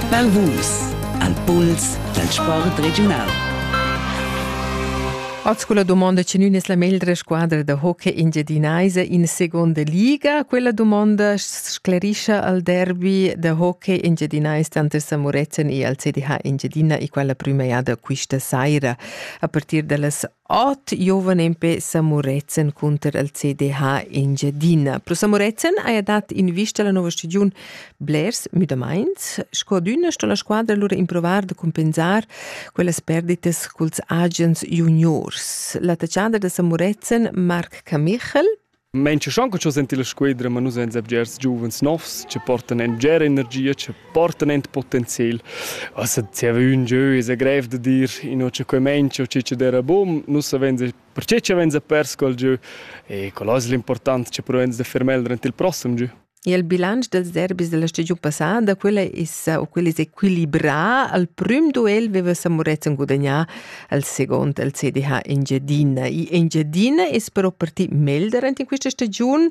Balvus, al puls dal sport regiunal. Oz quella domanda che nun es la meglra squadra da hockey engiadinaisa in seconda liga. Quella domanda sclerischa al derby da hockey engiadinais tanter San Murezzan e al CDH Engiadina e quella prüma jada quista saira. A partir da las Ot giuven empè sa Muretzen cunter il CDH Engiadina. Pro sa Muretzen haja dat in vista alla nova stagiun blers müdamaints. Scodüna sto la squadra lura improvar da compensar quellas perditas culs agens juniors. La tachada da sa Muretzen Marc Camichel Mensch schon co sentir la squedra, ma nus veins bgers giuvens novs che portan en bgera energia, che portan en potenzial. Also zieva ün jeu es grev da dir ino che quei mensch o chi dera bun, nus veins perche che veins pers col jeu e quello es l'important che provegns da fer meglio durant il prossem jeu. E il bilanc dels derbis della stagiun passada, quella es o quella es equilibrà. Al prüm duel veva Samurezzan gudagnà al second al CDH Engiadina. E Engiadina es però parti melder in questa stagiun,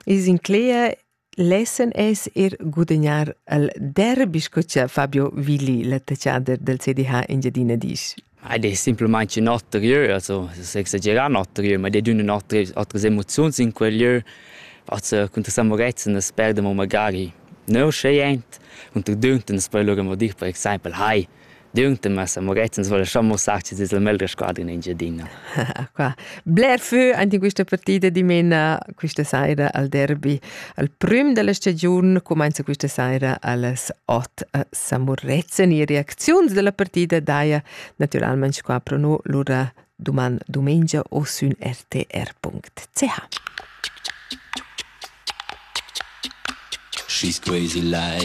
es in clea Lessen es er gudagnar al derbi, sco cha Fabio Willi, l'attaccader del CDH Engiadina, disch. Ed es simplamaing ün oter jeu, also es exagerà ün oter jeu, ma ed ed ün ün oters otras emoziuns in quel jeu, also cunter San Murezzan as perda mo magari neuscha jent, cunter Dünten as poja lura amo dir per exaimpel «Hai, Dünten, ma San Murezzan as voul lascià muossar ch'es es la meglra squadra in Engiadina». Qua bler fö aint in quista partida dimena quista saira al derbi. Al prüm da la stagiun cumainza quista saira a las ot. sa murezzan e reacziuns dalla partida daja naturalmein qua pro no lura duman dumengia o sün rtr.ch. She's crazy like